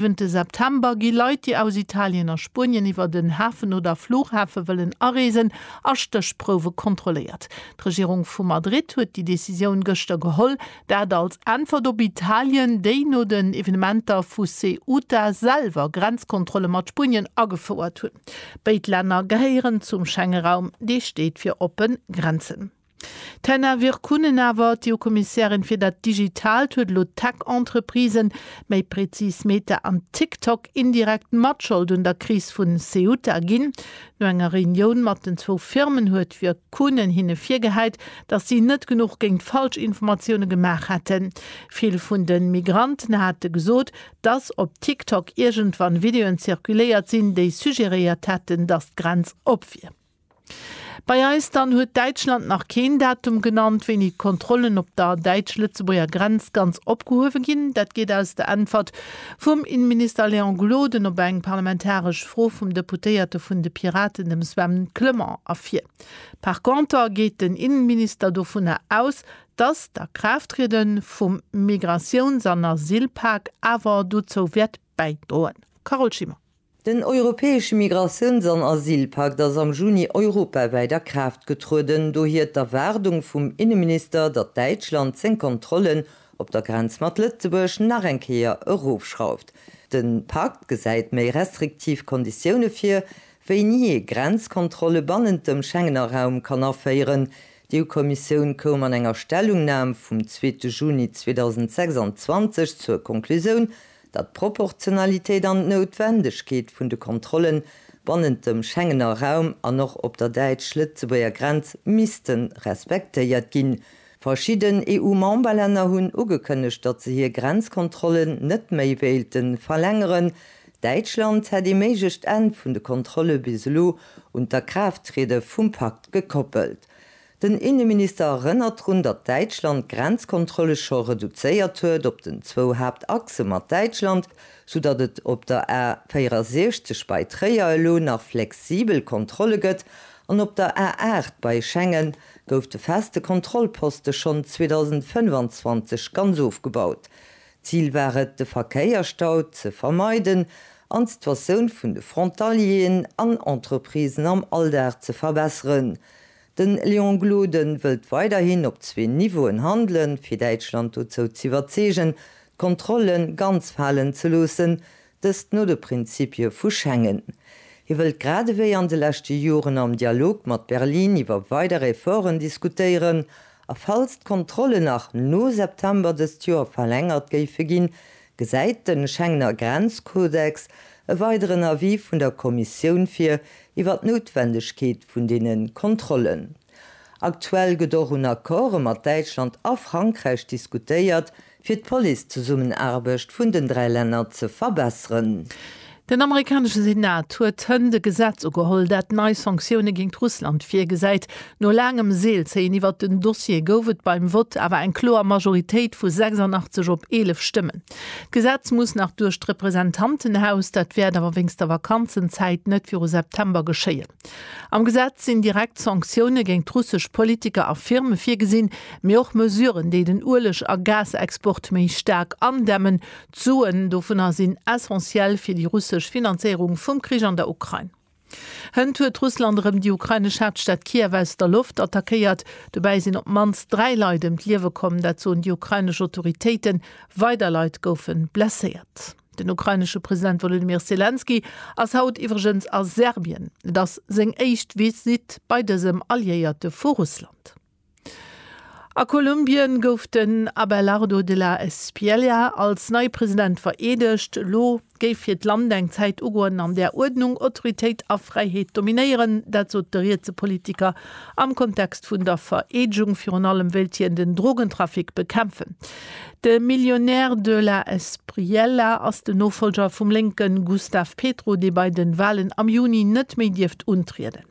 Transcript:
Ënte September gi Leit, déi aus Italien a Spuenien iwwer den Hafen oder Flughafe wëllen areesen, a Stéchprouwe kontrolléiert. D'Regierung vu Madrid huet déi Decisioun gëschter geholl. Dat als Äntwert op Italien, déi no den Evenementer vu Ceuta selwer Grenzkontrolle mat Spuenien agefouert hunn. Béid Länner gehéieren zum Schengeraum, dee steet fir oppe Grenzen. D'Hena Virkkunen awer, d'EU-Kommissärin fir dat Digitaalt, huet elo d'Tech-Entreprisen, méi prezis Meta an TikTok, indirekt Matschold un der Kris vu Ceuta ginn. No enger Reunioun mat den zwou Firmen huet d'Virkkunen hinne virgehäit, datt si net genuch géint Falschinformatioune gemaach hätten. Vill vun de Migranten hate gesot, datt op TikTok iergendwann Videoen zirkuléiert sinn, déi suggeréiert hätten, datt d'Grenz op wier. Bei eis dann huet Däitschland nach keen Datum genannt, wéini d'Kontrollen op der däitsch-Lëtzebuerger Grenz ganz opgehuewe ginn. Dat geet aus der Äntwert vum Innenminister Léon Gloden op eng parlamentaresch Fro vum Deputéierte vun de Piraten, dem Sven Clement, ervir. Par conter geet den Innenminister dovunner aus, datt d'Akraafttriede vum Migratiouns an Asylpak awer dozou wäert bäidroen. Carole Schimmer. Den europäesche Migratiouns an Asylpakt ass am Juni europawäit a Kraaft getrueden, dohier d'Erwaardung vum Inneminister, datt Däitschland seng Kontrollen op der Grenz mat Lëtzebuerg nach eng Kéier erofschrauft. De Pakt gesäit méi restriktiv Konditioune vir, wéini ee Grenzkontrolle bannent dem Schengener Raum kann aféieren. D'EU-Kommissioun koum an enger Stellungnam vum zweete Juni 2026 zur Conclusioun, datt d'Proportionalitéit an d'Noutwendegkeet vun de Kontrolle bannent dem Schengener Raum an och op der däitsch-lëtzebuerger Grenz misste respektéiert ginn. Verschidden EU-Memberlänner hunn ugekënnegt, datt se hir Grenzkontrollen net méi wéilte verlängeren. Däitschland hätt ee méiglecht Enn vun de Kontrolle bis elo un d'Akraafttriede vum Pakt gekoppelt. Den Inneminister erënnert drun, datt Däitschland d'Grenzkontrolle scho reduzéiert huet op den zwou Haaptachse mat Däitschland, sou datt et op der A 64 bei Tréier elo nach flexibel Kontrolle gëtt an op der A 8 bei Schengen gouf de feste Kontrollposte schonn 2025 ganz ofgebaut. Zil war et, de Verkéierstau ze vermeiden an d'Situatioun vun de Frontalieren an Entreprisen am Alldag ze verbesseren, Den Léon Gloden wëllt weiderhin op zwee Niveauen handelen, fir Däitschland dozou z'iwwerzeegen, d'Kontrolle ganz falen ze loossen, dëst no de Prinzippie vu Schengen. Hie wëllt gradewéi an de leschte Joren am Dialog mat Berlin iwwer weider Efforten diskutéieren a falls d'Kontrolle nach no September dëst Joer verlängert géife ginn, Gesäit de Schengener Grenzkodex e weideren Avis vun der Kommissioun vir iwwer d'Noutwendegkeet vun deene Kontrollen? Aktuell gëtt och un Accorde mat Däitschland a Frankräich diskutéiert, fir d'Police-Zesummenaarbecht vun den dräi Länner ze verbesseren. Den amerikanesche Senat huet hënt e Gesetz ugeholl, dat nei Sanktioune géint Russland virgesäit. No laangem Seelzéien iwwert den Dossier gouf et beim Vott awer eng kloer Majoritéit vu 86 op 11 Stëmmen. D'Gesetz muss nach duerch d'Representantenhaus, dat wäert awer wéinst der Vakanzenzäit net viru September geschéien. Am Gesetz sinn direkt Sanktioune géint russesch Politiker a Firme virgesinn, mee och Mesuren, déi den Ueleg a Gasexport méi staark andämmen, D'Suen dovunner sinn essentiell fir déi russesch Finanzéierung vum Krich an der Ukrain. Hënt huet Russland erëm déi ukrainesch Haaptstad Kiew aus der Loft attackéiert. Dobäi sinn op d'mannst dräi Leit ëm d'Liewe komm, dat soen déi ukrainesch Autoritéiten. Weider Leit goufe blesséiert. Den ukrainesche President Wolodymyr Selenskyj ass haut iwwregens a Serbien. Et ass seng éischt Visitt bei dësem Alliéierte vu Russland. A Kolumbien gouf den Abelardo de la Espriella als neie President vereedegt. Elo géif fir d'Land eng Zäit ugoen, an där Uerdnung, Autoritéit a Fräiheet dominéieren. Dat sot de rietse Politiker am Kontext vun der Vereedegung, virun allem wéilt hien den Drogentrafic bekämpfen. De Millionär de la Espriella ass den Nofollger vum Lénken Gustave Petro, dee bei de Walen am Juni net méi dierft untrieden.